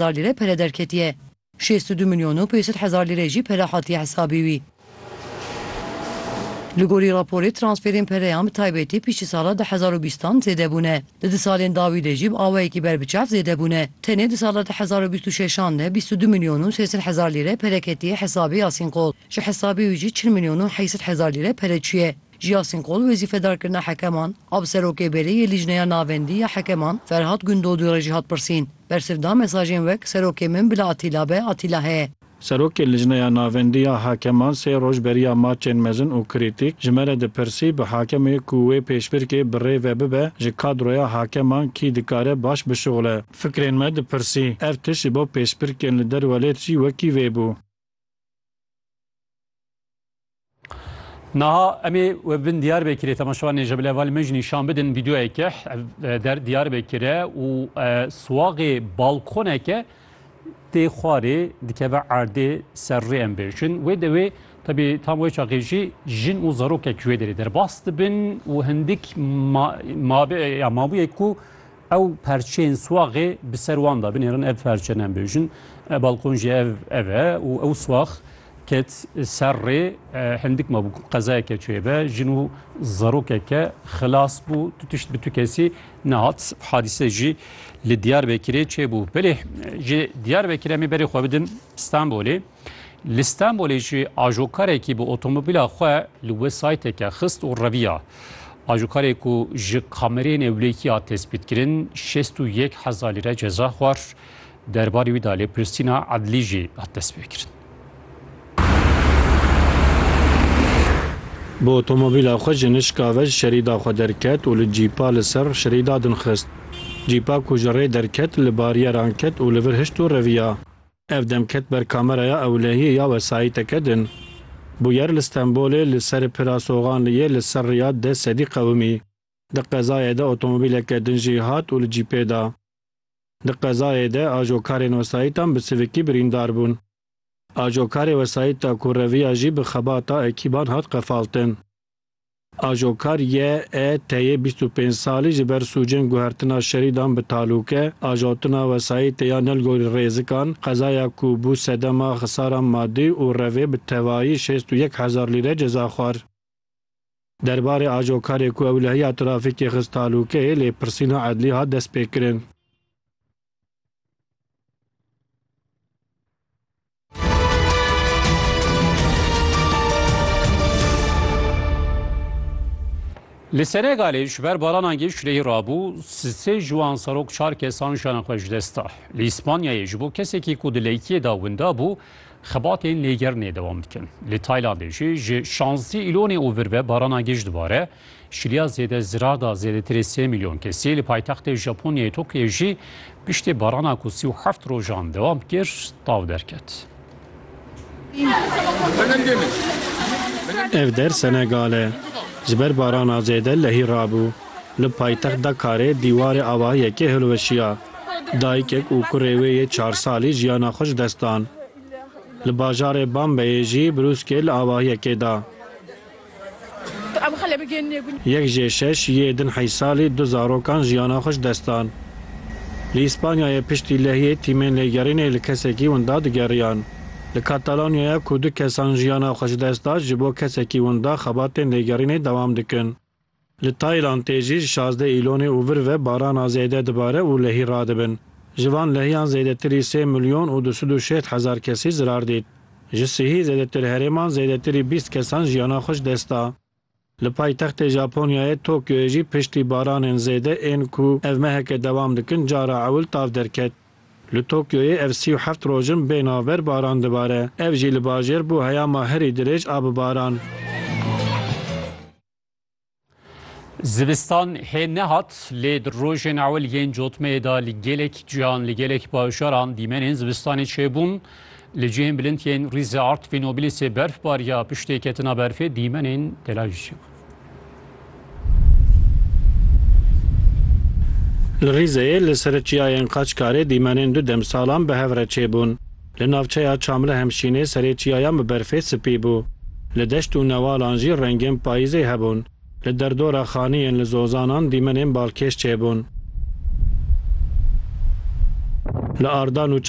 hezar lîre pere derketiye. Şêst û du milyon û pênc sed hezar lîre jî pere hatiye hesabî wî. Li gorî raporê transferên pereyan bi taybetî piştî sala du hezar û bîstan zêde bûne. Di du salên dawî de jî bi awayekî ber bi çav zêde bûne. Tenê di sala du hezar û bîst û şeşan de bîst û du milyon û sê sed hezar lîre pere ketiye hesabê Yasîn Qol. Ji hesabê wî jî çil milyon û heyî sed hezar lîre pere çûye. Ciyasîn Kol wezîfedar kirina hekeman a bi Serokê Berê yê Lîjneya Navendî ya Hekeman Ferhat Gundodû re jî hat pirsîn. Bersiv da mesajên wek Serokê min bila Atîla be, Atîla heye. Serokê Lîjneya Navendî ya Hekeman sê roj beriya maçên mezin û krîtîk ji me re dipirsî bi hakemê ku wê pêşbirkê bi rê ve bibe ji kadroya hakeman kî dikare baş bişuxile. Fikrên me dipirsî. Ev tişt ji bo pêşbirkên li derwelêt jî wekî vê bû. Naha emê we bin diyar be kire temaşevan nêje bile val min jî şan bidin vîdyoyeke der diyar be kire û suwaxê balkoneke tê xwarê dikeve erdê ser rê em bêjin. Wê dewê tebî tam wê çaxê jî jin û zarokek ji wê derê derbas dibin û hindik mabûyek ku Ew perçeyên swaxê bi ser wan de binêrin, ev perçe ne em bêjin. Balkon jî ev ev e û ew swax ket ser rê. Hindik mabû ku qezaya keçoyê be, jin û zarokeke xilas bû. Tu tişt bi tu kesî nehat. Hadîse jî li Diyarbekirê çêbû. Belê ji Diyarbekirê em ê berê xwe bidin Stenbolê. Li Stenbolê jî ajokarekî bi otomobîla xwe li wê sayteke xist û reviya. Ajokarê ku ji kamereyên ewlekî hat tespîtkirin şêst û yek hezar lîre ceza xwar. Derbarê wî de lêpirsîna edlî jî hat destpêkirin. Bi otomobîla xwe ji Nişkave ji şerîda xwe derket û li cîpa li ser şerîda din xist. Cîpa ku ji rê derket li barîyeran ket û li vir hişt û reviya. Ev dem ket ber kameraya ewlehiyê ya wesayîteke din. Bûyer li Stenbolê li serê Pira Soxan yê li ser rêya deh sedî qewimî. Di qezayê de otomobîleke din jî hat û li cîpê da. Di qezayê de ajokarên wesayîtan bi sivikî birîndar bûn. Ajokarê wesayîta ku reviya jî bi xebata ekîban hat qefaltin. Ajokar YET'ê bîst û pênc salî ji ber sûcên guhertina şerî dan bi talûke, ajotina wesayîtê ya Nelgorî Rêzikan, qezaya ku bû sedema xisaran madî û revê bi tevayî şêst û yek hezar lîre ceza xwar. Derbarê ajokarê ku ewlehiya trafîkê xist talûke yê lêpirsîna edlî hat destpêkirin. Li Senegalê ji ber baranan geş lehî rabû sê ji wan serok çar kesan jiyana xwe ji dest da. Li Îspanyayê ji bo kesekî ku di leyikiyê de winda bû xebatên lêgerinê dewam dikin. Li Taylandê jî ji şazdî îlonê û vir ve barana geş dibare. Şiliya zêde zirar da zêdetirê sê milyon kesî li paytextê Japonyayê Tokyoyê jî piştî barana ku sî û heft rojan dewam kir tav derket. Ev der Senegal e. Ji ber barana zêde lehî rabû. Li paytext Dakarê dîwarê avahiyekê hilweşiya. Dayikek û kurê wê yê çar salî jiyana xwe ji dest dan. Li bajarê Bambeyê jî brûskê li avahiyekê da. Yek jê şeş yê din Heysalî du zarokan jiyana xwe ji dest dan. Li Îspanyayê piştî lehiyê tîmên lêgerînê li kesekî winda digeriyan. Li Katalonyaya ku du kesan jiyana xwe ji dest da ji bo kesekî winda xebatên lêgerînê dewam dikin. Li Taylandê jî ji şazdeh Îlonê û vir ve barana zêde dibare û lehî radibin. Ji van lehiyan zêdetirî sê milyon û du sed û şêst hezar kesî zirar dît. Ji sihî zêdetir herêman zêdetirî bîst kesan jiyana xwe ji dest da. Li paytextê Japonyayê Tokyoyê jî piştî baranên zêde ên ku ev meheke dewam dikin cara ewil tav derket. Li Tokyoyê ev sî û heft roj in bê navber baran dibare. Ev jî li bajêr bû heyama herî dirêj a bi baran. Zivistan hê nehat lê di rojên ewil yên cotmeyê de li gelek cihan li gelek bajaran dîmenên zivistanê çêbûn. Li cihên bilind yên rîzê Artvîn û Bilîsê berf bariya piştê ketina berfê dîmenên delal jî çêbûn. Li Rîzeyê li ser çiyayên Qaçkarê dîmenên du demsalan bi hev re çêbûn. Li navçeya Çamlihemşînê serê çiyayan bi berfê spî bû. Li deşt û newalan jî rengên payîzê hebûn. Li derdora xaniyên li Zozanan dîmenên balkêş çêbûn. Li Arda Nûça